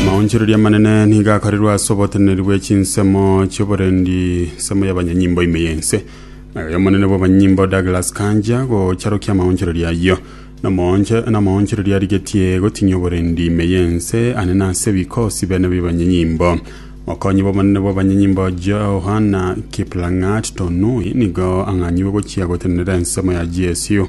Amaonchoreria amanene nigo akorerwe ase oboteneneri bwe chinsemo chioborendi nsemo y'abanyanyimbo ime y'ense. Naye omonene bw'abanyanyimbo Douglas Kanja gocharokia amaonchoreria ayio. Namoonche- Namaonchoreria arigetie gotinyia oborendi ime y'ense ane nase ebikosi bene bi'abanyanyimbo. Mokonyi bw'omonene bw'abanyanyimbo Johana Kiplang'at Tonui nigo ang'anyiwe gochia gotenenera ensemo ya GSU.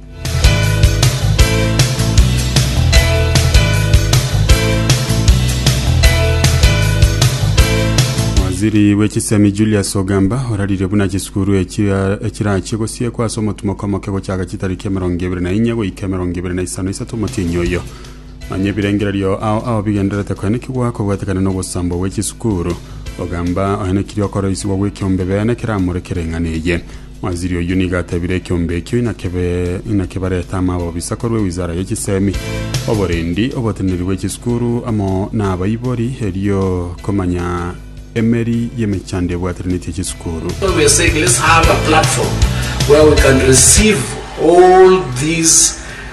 Waziri bw'echisemi Julius Ogamba oraririe buna chisukuru echira- echirachie gosiekwa ase omotumoko omoke gochaka chitariki emerongo ebere na inye goika emerongo ebere na isano isato omotienyi oyo. Manya ebirengererio ao ao bigendererete koenekigwa kobwetekana nogosambwa gwe chisukuru. Ogamba oenekirie okoroisigwa gw'ekiombe bene keramore kere eng'ana eye. Waziri oyio nigo atebire ekiombe ekio inakebe inakebarete amabobisa korwa ewizara ye chisemi, oborendi, oboteneneri bwe chisukuru amo na abaibori erio komanya emeri y'emechando ebwateranetie chisukuru. So we are saying let's have a platform where we can receive all these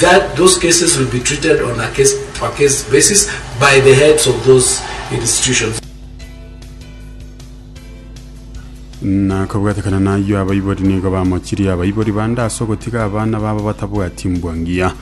that those cases will be treated on a case per case basis by the heads of those institutions. Na kobwatekana nayio abaibori nigo bamochirie abaibori bande ase ogotiga abana babo batabwati mbwa ngiya.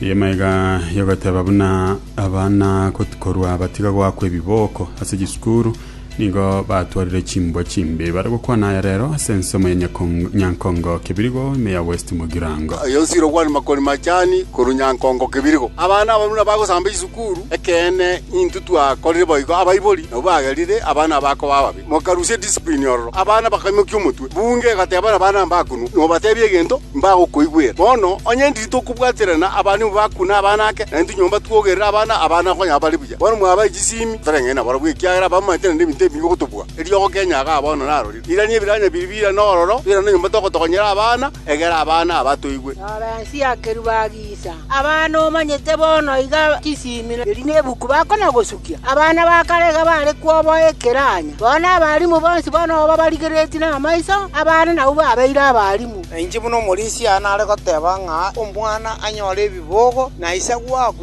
Eyemo iga yogoteba buna abana got- korwa batiga goakwa ebiboko ase chisukuru Nigo batwarire chimbwa chimbe bare gokwana aya rero ase ensemo ya Nyakong- Nyankongo Kebirigo, ime ya West Mogirango. Aye osire okwana makori machani korwa Nyankongo Kebirigo. Abana abaruna bagosamba chisukuru, ekeene intwe twakorire boigo abaibori nabwo bagerire abana bakoba ababe. Mokarusia ediscipline ororo, abana bakaimokia omotwe. Bunge egateba nabana mbakunwa, nobatebia egento, mbagokoigwera. Bono onye ndiri tokobwaterana abana nigo bakuna abana ake, naintwe nyomba twogerere abana, abana okonyora bare buya. Bono mwabae chisiimi, toreng'ane nabarabwo, ekiagera abamanyete naende ebinto ebibe gotobua. Eriogo Kenya gaa bono narorire. Irania ebiranya biria bire nororo, irana enyomba togotokonyera abana, egera abana aba toigwe. Rora ense ya kerubo agisa. Abana omanyete bono iga chisiimi, erio nebuku bakona gosukia. Abana ba kare iga bare kwoboa ekeranya. Bono abalimu bonsi bono oba barigeretie namaiso, abana nabwo babeire abalimu. Nainche buna omorisia nare goteba ng'a omwana anyore ebibogo na ise gwaku.